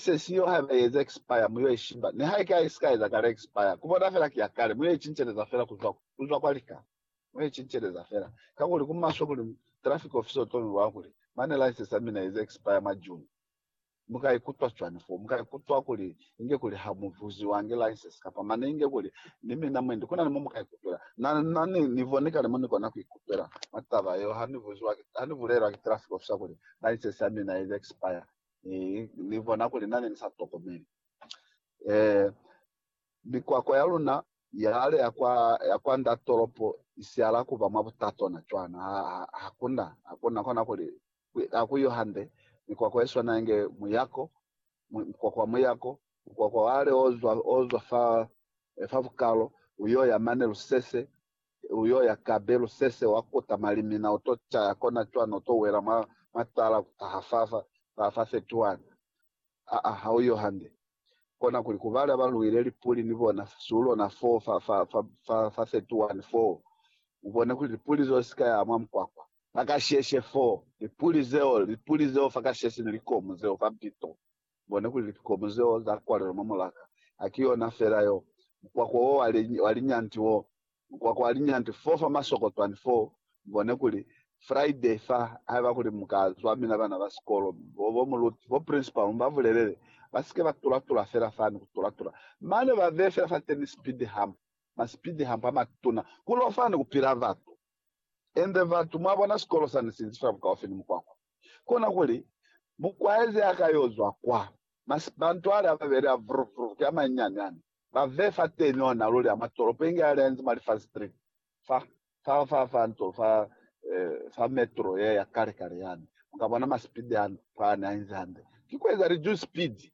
Se siyo haiba i eza expire mu yo i shiba, nihaike ha i si ka eza kale expire. Ku bona fela ki ya kale, mu yo i cinceleza fela kuzwa, kuzwa kwa lika. Mu yo i cinceleza fela. Kakuli ku maswe kuli traffic officer u to mi bwa kuli, Mane license ya mina i eza expire mwa June. Mu ka ikutwa cwani foo? Mu ka ikutwa kuli inge kuli ha mu buziwangi license, kapa mane inge kuli, Ni mina mwendi. Ku na ni mo mu ka ikutwela. Na, na ni, ni boni kale mo ni kona ku ikutwela mwa taba yeo ha ni buziwa ki, ha ni bulelwa ki traffic officer kuli license ya mina i eza expire. Ni bona kuli na ne ni sa tokomeli. Mikwakwa ya luna ya ale ya kwa, ya kwa nda tolopo i siala ku ba mwa butatwana cwana. Hakuna, hakuna kona kuli, ha ku yo hande, mikwakwa ye swana inge muyako, mukwakwa wa muyako, mukwakwa wa ale o zwa, o zwa fa, fa bukalo, u yo ya mane lusese, Uyo ya kabe lusese wa kuta malimina uto caya kona cwani uto wela mwa matala kutaha fafa fa fa 31. Aa ha uyo hande. Kona kuli ku bala ba luile lipuli ni bona su lona fo fa fa fa fa fa 31 foo ubone kuli lipuli zeo sika ya mwa mukwakwa. Fakasheshe foo lipuli zeo lipuli zeo fakasheshe ni likomu zeo fa mpito. Mubone kuli likikomu zeo za kwalelwa mwa mulaka. Ha ki yona fela yo. Mukwakwa wo wa, wa linyanti wo. Mukwakwa wa linyanti foo fa masokotwani foo. Mubone kuli, Friday fa, haiba kuli mu ka zwa mina bana ba sikolo, bo, bo muluti, bo principal, mu ba bulelele ba sike ba tula-tula fela fani, ku tula-tula. Mane ba beye fela fateni speed hump, ma speed hump a matuna, ku lo fani ku pila batu. Ende batu, mwabona, sikolo sani sinzi fa bukaufi ni mukwakwa. Kona kuli, mukwaezi a ka yo zwa kwa, masibantu ali ababeli a vruvruki amanyinyani ani, ba vee fateni ona luli a mwa tolopo inge ali anzi mwa Lifford Street, fa, fa, fa, fa nto, fa, eh, fa metro ye ya kale-kale yani. Mukabona masipidi ani, fani, ainzi hande. Ki kueza lijuzi-sipidi.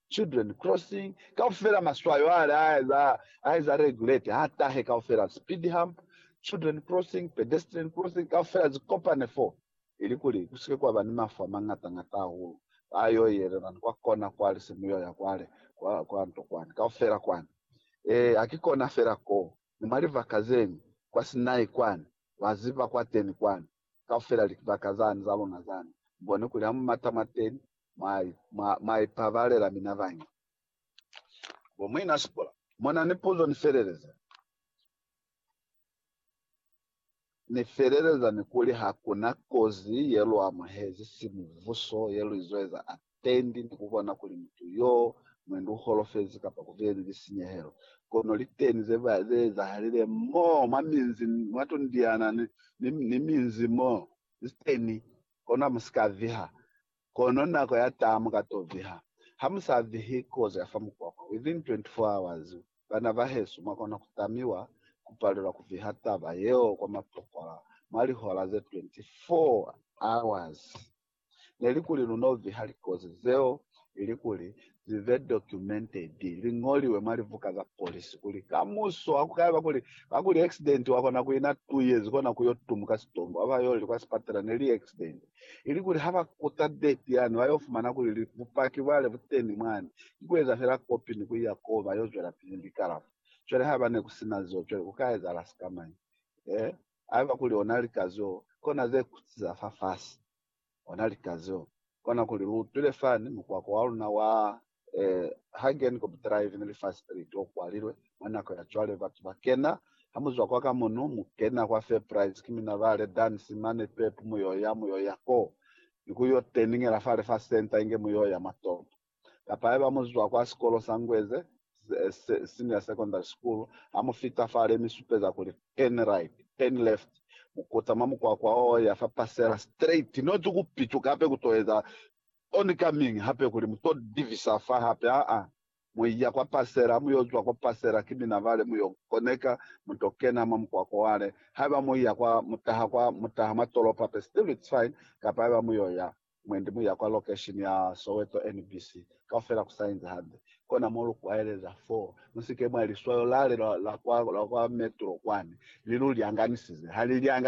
Children Crossing, kaufela maswayo ale a eza regulate ha tahe kaufela, speed hump, children crossing, pedestrian crossing, kaufela zi kopane foo ili kuli ku sike kwa ba ni mafu a mañata ñata hahulu a yo yelelani kwa kona kwale se mu yo ya kwale kwa nto kwani kaufela kwani. Ee, ha ki kona fela koo, ni mwa libaka zeñwi kwa Sinai kwani, lwa ziba kwateni kwani. Kaufela libaka zani za luna zani boni kuli ha mu mata mwateni mwa ipabalela mina bañi. Bo muina sikola muna ni puzo ni feleleza ni feleleza ni kuli hakuna kozi ye lu amuhezi simubuso ye lu izo eza api. tendi ni kubona kuli mutu yo mwendi uholofezi kapa kubeeni lisinyehelo. Kono liteni zeezahalile mo mwa minzi, mwa tundiana ni minzi mo liteni. Kono hamusika viha, kono nako yataa muka to viha. Hamusa vihi kozi ya fa mukwakwa. Within 24 hours, bana bahesu mwakona kutamiwa kupalelwa kuviha taba yeo kwa matokwa mwa lihola ze 24 hours. nelikuli lunoviha likozi zeo ilikuli zibe documented, liñoliwe mwa libuka za polisi kuli kamuso hakukayaba kuli kakuli accident wakona kuina tu yezi kona kuyo tumuka sitombo haba yoli kwa sipatela neli accident, ilikuli haba kuta date yani bayo fumana kuli bupaki bwale buteni mwani ki kueza fela copy ni kuiya koo bayo zwelapili ni likalafo. Cwale haba nekusina zeo cwale kuka ezahala sikamañi? He? Haiba kuli ona lika zeo kona ze kuti za fafasi, ona lika zeo kona kuli lu utwile fani mukwako wa luna wa, eh, Hagenkop Drive ne li fa street o kwalilwe. Mwa nako ya cwale batu ba kena, ha mu zwa kwa ka mono, mu kena kwa Fairprice, ki mina ba le dansi mane pep, mu yo ya, mu yo ya koo, ni ku yo teningela fale fa center inge mu yo ya mwa topo. kapa haiba mu zwa kwa sikolo sa Ngweze Senior Secondary School, ha mu fita fale mi supeza kuli turn right, turn left, mu kutama mukwakwa o ya fa pasela straight, not ku pituka hape ku to eza oncoming hape kuli mu to divisa fa hape, aa, mu ya kwa pasela, ha mu yo zwa kwa pasela ki mina bale mu yo koneka, mu to kena mwa mukwakwa wale, haiba mu ya kwa, mu taha kwa, mu taha mwa tolopo hape still it's fine, kapa haiba mu yo ya mwendi muya kwa lokeshini ya Soweto NBC kaufela kusainzi hande kona mo lu kwaeleza fo mu si ke mwa liswayo lale la kwa metro kwani li lu lyanganisize ha li lyanganisi